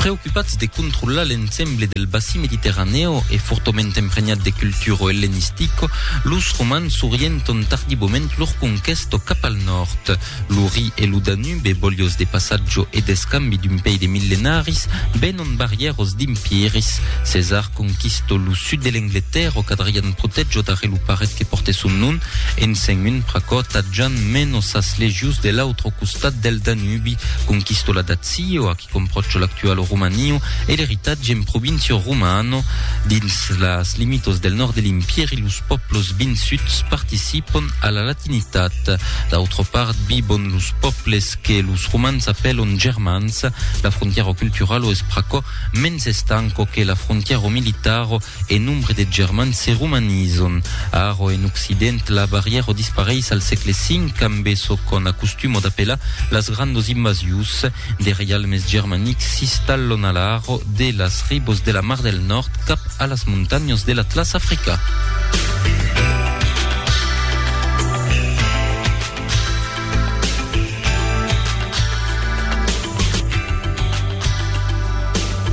Preocupats de controlar l'ensemble del bassin mediterranèo e fortament emprenhat de culturo ellenistico, los romans s'orienton tardivament lor conquèsto cap al nòrd. Lo Ri e lo Danube, bolhos de passatjo e d'escambi d'un pei de millenaris, venon barrièr os d'empiris. Cesar conquisto lo sud de l'Engletèrra qu'Adrian protejo darrer lo paret que pòrte son nom, en sent un pr'aquò, tadjant meno sas legions de l'autre costat del Danubi, conquisto la Dàcia. Sio a qui compròcho l'actual romanio e l'eritatge en provincio romano. Dins las limitos del nòrd de l'Impèri los pòplos vinsuts participon a la latinitat. D'autra part vivon los pòples que los romans apèlon germans. La frontièra culturalo es pr'aquò mens estanco que la frontièra militaro E nombre de germans se romanizon. Aro en occident la barrièra o dispareis al sègle V ambe çò qu'on acostumo d'apelar las grandos invasius de reialmes germanics s'istallon a l'aro de las ribos de la Mar del Nòrd cap a las montanhas de l'Atlas africà.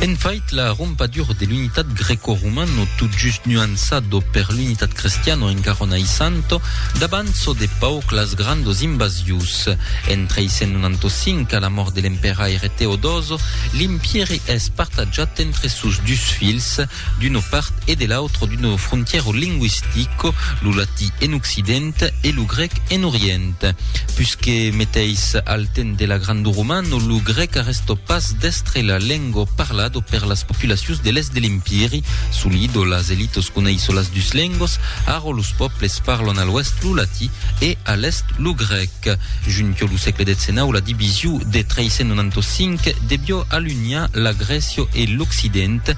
En fait, la rompadura de l'unitat greco-romana, tot just nuançado per l'unitat cristiana en Carona i Santo, dabanço de pauc las grandos invasius. En 395, a la mort de l'emperaire Teodoso, l'empièri es partatjat entre sos dus filhs, d'una part e de l'autra d'una frontièra lingüistica, lo latí en occident e lo grèc en orient. Pus que meteis al temps de la Grande Romana, lo grèc arrèsta pas d'èstre la lenga parlada per las populacions de l'èst de l'Empiri, solida las elitas coneis las dus lengas, ara los pòbles parlan a l'oèst lo latí e a l'èst lo grèc. Junta lo sègle xix la division de 395 deviá alunhar la Grècia e l'occident,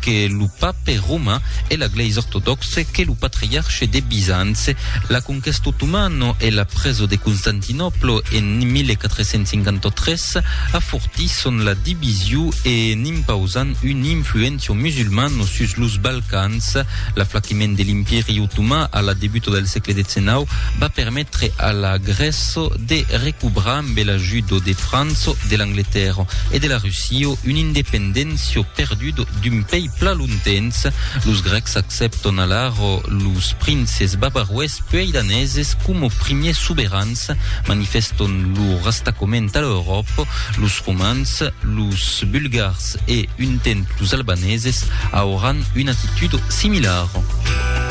que lo pape romain e la glèisa ortodòxe que lo patriarche de Bizanci. La conquèsta otomana e la presa de Constantinòpla en 1453 afortisson la division e n'impausan una influéncia musulmana sus los Balcans. L'aflaquiment de l'Impèri otoman a la debuta del sègle XIX va permetre a la Grèça de recobrar ambe l'ajuda de França, de l'Angletèrra e de la Russia una independéncia perduda Sud d'un pei pla lontens, los Grècs accepton alara los princes bavaroes puei daneses coma primiers soberans, manifeston lor rastacament a l'Euròpa, los Romans, los Bulgars e un temps los Albaneses auran una actitud similara.